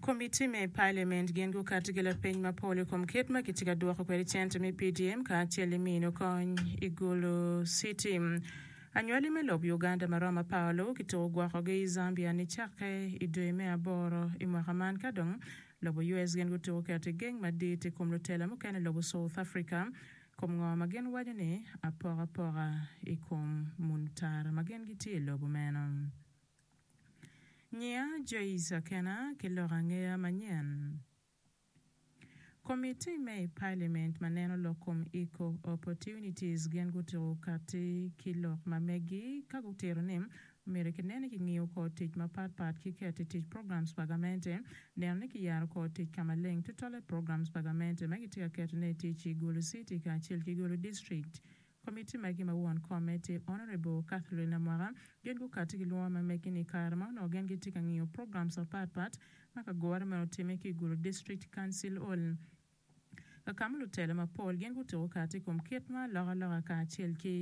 Komitti me Paliament gin gukato ki lapeny mapol i kom kit ma kitye ka dwoko kwede cente me PDM kacel i mino kony i Gulu City. Anywali me lok Uganda ma romo apar luwu kituko gwokogi i Zambia nicakke i dwe me aboro i mwaka man ka dong lobo US gin gutuko keto i geng madit i kom lutela mukene lobo South Africa Kom ngo ma gin waco ni apokapoka i kom muntar ma gin gitye i lobo meno? Nyiya Joyce Akena ki lok angeya manyen. Komitti me i Palimint ma neno lok kom Equal Opportunities gin gutuku katti ki lok ma meggi ka gutito ni Myero kine ni kingiyo kor tic mapatpat ki keto i tic programs pa gamente, neno ni kiyaro kor tic ka maleng tutwalle i programs pa gamente ma gitye ka ketone i tic i Gulu City kacel ki Gulu District. Komitti magi ma won komme tye Honourable Catherine Namwaka gin gukati ki lwongo ma megi ni kare ma onongo gin gitye ka ngiyo programs mapatpat ma kagore meno otimme ki i Gulu District Council Hall, Kakamu lutela mapol gin gutuko kati i kom kit ma alokaloka kacel ki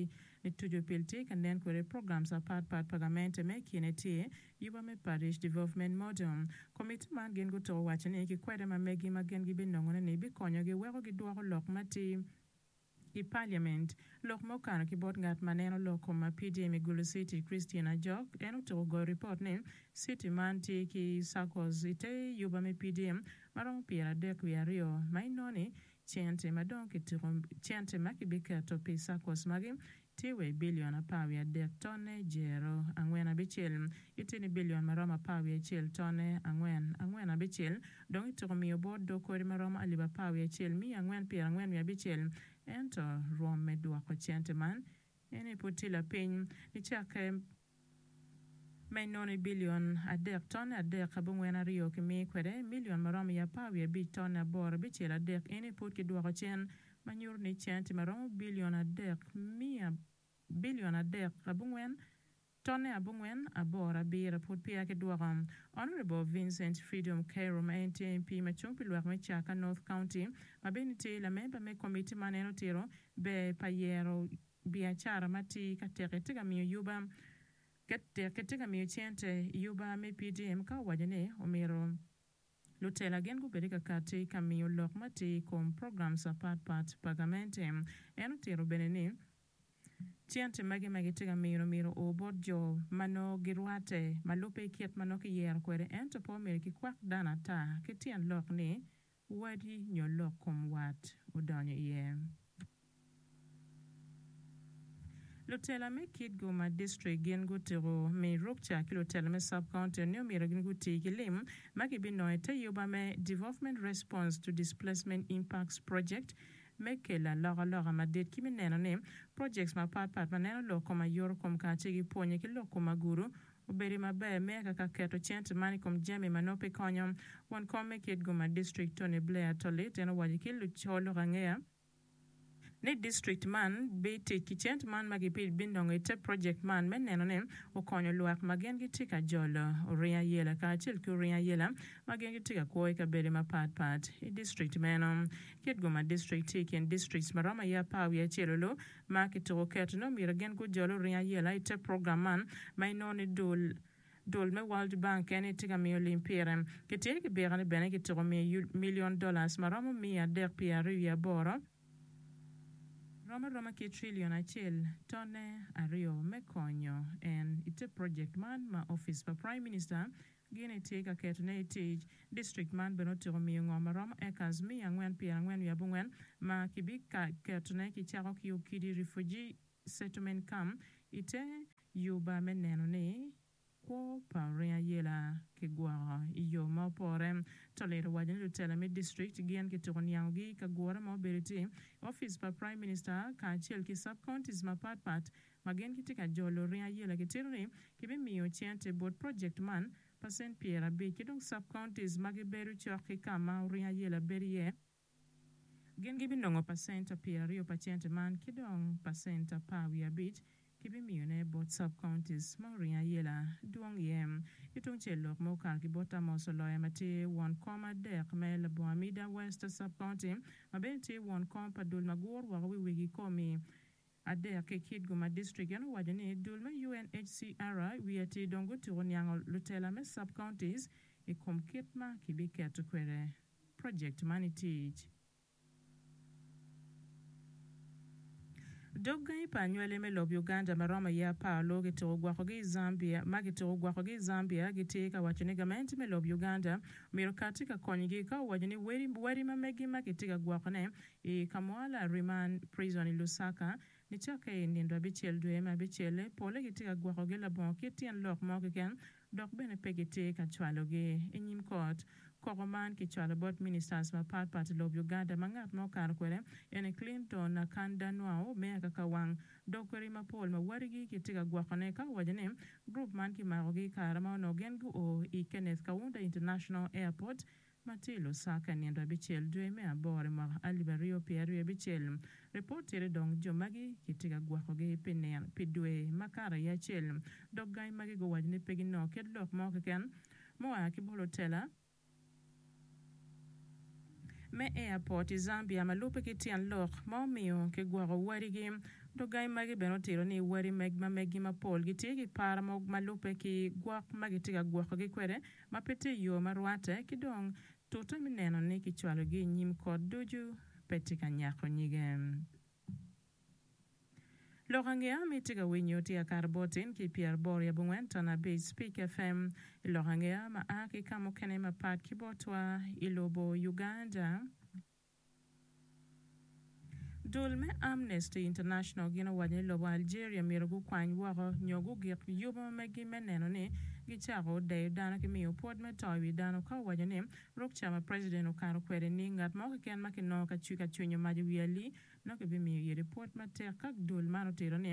mitucu pil tye ka nen kwede i programs apat pat pa gamente ma i kine tye Yuba me Parish Development Model. Komitti man gin gutuko waco ni ki kwede ma megi ma gin gibinongone ni bikonyogi weko gidwoko lok ma ti I Parliament, lok ma okato ki bot ngat ma neno lok kom ma PDM i Gulu City, Christine Ajok, en otuko goyo ripot ni city man tye ki circles i te yuba me PDM ma romo pyer adek wiye aryo ma inongo ni cente ma dong kituko cente ma kibiketo pi circles magi tye wa i bilion apar wiye adek tonne jero angwen abicel, itye ni bilion ma romo apar wiye acel tonne angwen angwen abicel, dong ityeko miyo bot dog kodi ma romo alip apar wiye acel miya angwen pyera angwen wiye abicel. Ento, rwom me dwoko cente man, ene pud tye lapiny. Nicakke. Me nono i bilion adek tonne adek abongwen aryo kimi kwede milion ma romo i apar wiye abic tonne aboro abicel adek eni pud ki dwoko cen ma nyuto ni centi ma romo bilion adek miya bilion adek abongwen tonne abongwen aboro abiro pud peya ki dwoko. Honourable Vincent Freedom Kairo ma en tye MP ma cung pi lwak me Chaka North County ma bene tye lamemba me komitti man en otito ber pa yero Biacara ma tye ka teki tye ka miyo yuba teki tye ka miyo cente yuba me PDM ka owaco ni omyero lutela gin gubed ka kati ka miyo lok ma tye i kom programs apat pat pa gamente. En otito bene ni cente magi ma gitye ka mino myero o bot jo ma nongo girwate ma lubbe kit ma nongo kiyero kwede ento pe omyero kikwak dano ata ki tyen lok ni Wadi nyo lok kom wat odonyo iye. Lutela me Kitgum ma District gin gutiko Miyo Rukca ki lutela me Sub County ni omyero gin guti ki lim ma gibinongo i te yuba me Development Response to Displacement Impacts Project me kelo alokaloka madit ki me neno ni projects mapatpat ma neno lok kom ayoto kom kacel ki pwonye ki lok kom agulu Obedi maber me ka ka keto cente man i kom jami ma nongo pe konyo. Won kom me kit guma district Tony Blair Tolit en owaco ki luco lok angeya ni district man bi tic ki cente man ma gipi binongo i te project man me neno ni okonyo lwak ma gin gitye ka jolo oringo ayela kacel ki oringo ayela ma gin gitye ka kwo i kabedo mapat pat i district meno. Kit guma district tye i kin districts ma romo aye apar wiye acel olu ma kituko keti-ni omyero gin gujol oring ayela i te program man ma inongo ni dul dul me World Bank kene tye ka miyo lim pire. Kitye ki bika ni bene kituko miyo yul milion dollars ma romo miya adek pye aryo wiye aboro, rom aroma ki trillion acel tonne aryo me konyo en i te project man ma office pa Prime Minister Gin etye ka ketone i tic. District man bene otyeko miyo ngom ma romo acres miya angwen pyer angwen wiye abongwen ma ki bi ka ketone ki cako ki Okidi Refugee Settlement Camp i te yuba me neno ni kwo pa oring ayela ki gwoko i yo ma opore. Tolit owaco ni lutela me district gin ki tuku niango gi i ka gure ma obedo iti office pa Prime Minister kacel ki sub counties ma pat pat ma gin gitye ka jolo ringo ayela gitito ni kibimiyo cente bot project man pa cent pyerabic ki dong sub counties ma gibedo cok ki ka ma ringo ayela bedo iye gin gibinongo pacent pyeraryo pa cente man ki dong pacent apar wiye abic kibimiyone bot sub counties ma ringo ayela dwong iye. Ki tung cel lok ma okato ki bot Amos Oloya ma tye won kom adek me labongo Amida West sub county ma bene tye won kom pa dul ma guro woko wi wigi komi adek ki Kitgum District. En owaco ni dul me UNHCR wiye atir dong gutuko niango lutela me sub-counties i kom kit ma kibiketo kwede project man i tic. Dog gangi pa anywali me lob Uganda ma romo aye apar lur kituko gwokogi i Zambia ma kituko gwokogi i Zambia gitye ka waco ni gamente me lob Uganda myero kati ka konygi ka owaco ni wadi ma megi ma kitye ka gwokone I ka mo lariman, prison, i Lusaka, nicokke i nindo abicel dwe me abicel-le, pole gitye ka gwokogi labongo kit tyen lok mo keken dok bene pe gitye ka cwalogi i nyim kot. Koko man kicwalo bot ministers mapat pat i lob Uganda ma ngat ma okato kwede eni Clinton Akanda Nwau me Akakawang dok kwede i mapol ma wadigi kitye ka gwokone ka owaco ni group man kimakogi i kare ma onongo gin guo i Kenneth Kaunda International Airport ma tye i Lusaka nino abicel dwe me aboro i mwaka alip aryo pyeraryo abicel. Ripot tye ni dong jo magi kitye ka gwokogi pi nino pi dwe makato aye acel, dok gangi magi guwaco ni pe ginongo kit lok mo keken mua ki bot lutela me airport i Zambia ma lubbe ki tyen lok ma omiyo kigwoko wadigi. Dok gangi magi bene otito ni wadi ma meggi mapol gitye ki par ma lubbe ki gwok ma kitye ka gwokogi kwede ma pe tye i yo ma rwatte, ki dong tute me neno ni kicwalogi i nyim kot ducu pe tye ka nyako nyige. Lok angeya ma itye ka winyo tye Akar Botin ki Pyeraboro yab Ongwen Ton Abic, Speak FM, i lok angeya ma a ki ka mukene mapat ki botwa i lobo Uganda. Dul me Amnesty International gin owaco ni lobo Algeria myero gukwany woko nyo gugik yubo megi me neno ni gicako deyo dano ki miyo pwod me to i wi dano ka owaco ni ruk ca ma president okato kwede ni ngat mo keken ma kinongo ka cwi ka cwinyo mac i wi ali nongo kibimiyo yedi pwod matek ka dul man otito ni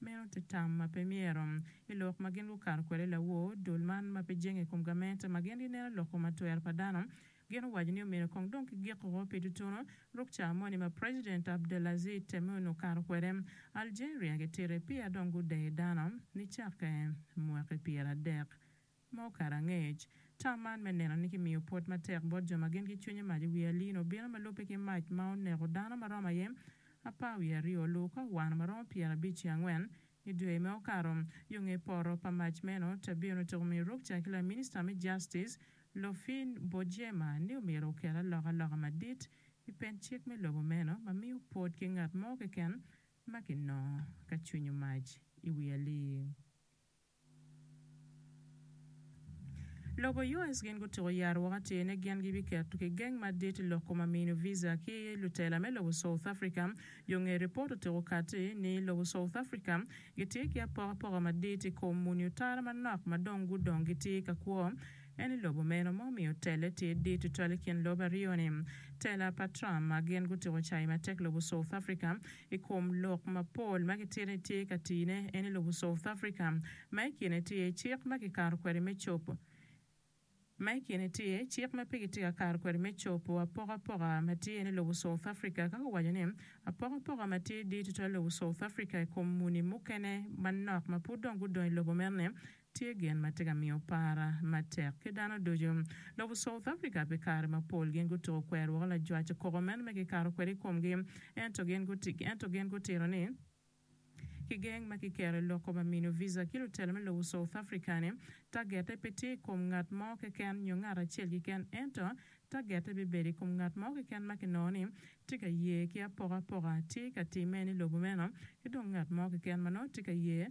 meno tye tam ma pe myero. I lok ma gin gukato kwede lawor dul man ma pe jenge i kom gamente ma gin gineno loko matwer pa dano Gin owaco ni omyero kong dong kigiko pi tutunu ruk ca moni ma President Abdelaziz Temoun okato kwede. Algeria gitite pia dong gudeyo dano nicakke mwaki pyeradek ma okato angec. Tam man me neno ni kimiyo pwod matek bot jo ma gin ki cwinye mac i wi alino obino ma lubbe ki mac ma oneko dano ma romo aye apar wiye aryo, luwu ka owano ma romo pyerabic ki angwen I dwe ma okato, yo nge poto pa mac meno, Tabia onongo otyeko miyo rukca ki laminista me Justice, Lofin Bojema, ni omyero oket alokaloka madit i pen cik me lobo meno ma miyo pot ki ngat mo keken ma kinongo ka cwinyo mac i wi alii. Lobo US gin gutuko yat woko atir ni gin gibiketo ki geng madit i loko ma mino visa ki lutela me lobo South Africa. Yo nge ripot otiko kati ni lobo South Africa gitye ki apokapoka madit i kom muni otara manok ma dong gudong gitye ka kwo. En i lobo meno ma omiyo tele tye dit tutwal i kin lobo aryo ni? Tela pa Trump ma gin gutuko cayi matek lobo South Africa. I kom lok mapol ma kitye ni tye ka tine en i lobo South Africa, ma i kine tye iye cik ma kikato kwede me cob ma i kine tye iye cik ma pe kitye ka kato kwede me cob apokapoka ma tye en i lobo South Africa ka guwaco ni apokapoka ma tye dit tutwal i lobo South Africa i kom muni mukene manok ma pud dong gudong i lobo meno ni tye gin ma tye ka miyo para matek ki dano ducu. Dok i South Africa pi kare mapol gin gutuko kwero woko lajwac koko meno ma kikato kwede i komgi, ento gin guti, ento gin gutito ni kigeng ma kiketo i loko ma mino visa ki lutela me lobo South Africa ni tagette pe tye i kom ngat mo keken nyo ngat acel keken ento tagette bibedo i kom ngat mo keken ma kinongo ni tye ka ye ki apokapoka tye ka timme ni lobo meno ki dong ngat mo keken ma nongo tye ka ye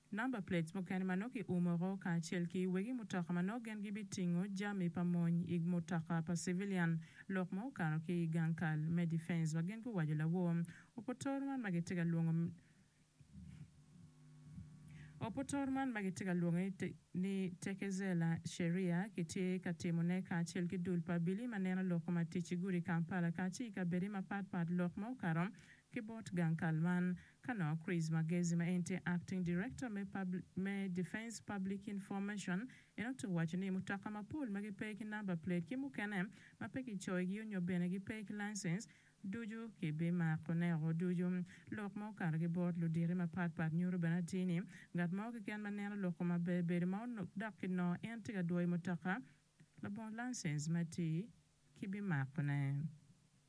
Number plates mukene ma nongo ki umo woko kacel ki wegi mutoka ma nongo gin gibi tingo jami pa mony i mutoka pa civilian lok ma okato ki i gang kal me defence wa gin guwaco lawor oputor man ma gitye ka lwongo oputor man ma gitye ka lwonge ni Tekezela Sheria ki tye ka timo ne kacel ki dul pa Billy ma neno loko matic i gudi Kampala kaci i kabedi ma pat pat lok ma okato ki bot gang kal man Ka nongo Chris Magezi ma en tye Acting Director me me Defence Public Information en otugo waco ni mutoka mapol ma gipe ki number plate ki mukene ma pe kicoyogi onyo bene gipe ki licence ducu kibimako neko ducu. Lok ma okato ki bot luditi mapat pat nyuto bene atir ni ngat mo keken ma neno lok kome maber bedo ma onok dok ki nongo en tye ka dwoyo mutoka labongo licence ma atir kibimako ne.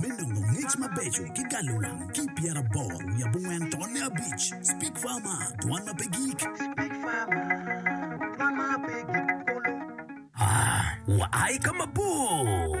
me nongo ngec mabeco ki galo wang ki pyeraboro wiye abongwen tonne abic. Speak Farmer, dwan ma pe gik. Speak Farmer, dwan ma pe gik kulu. Aa, wua i ka mabor.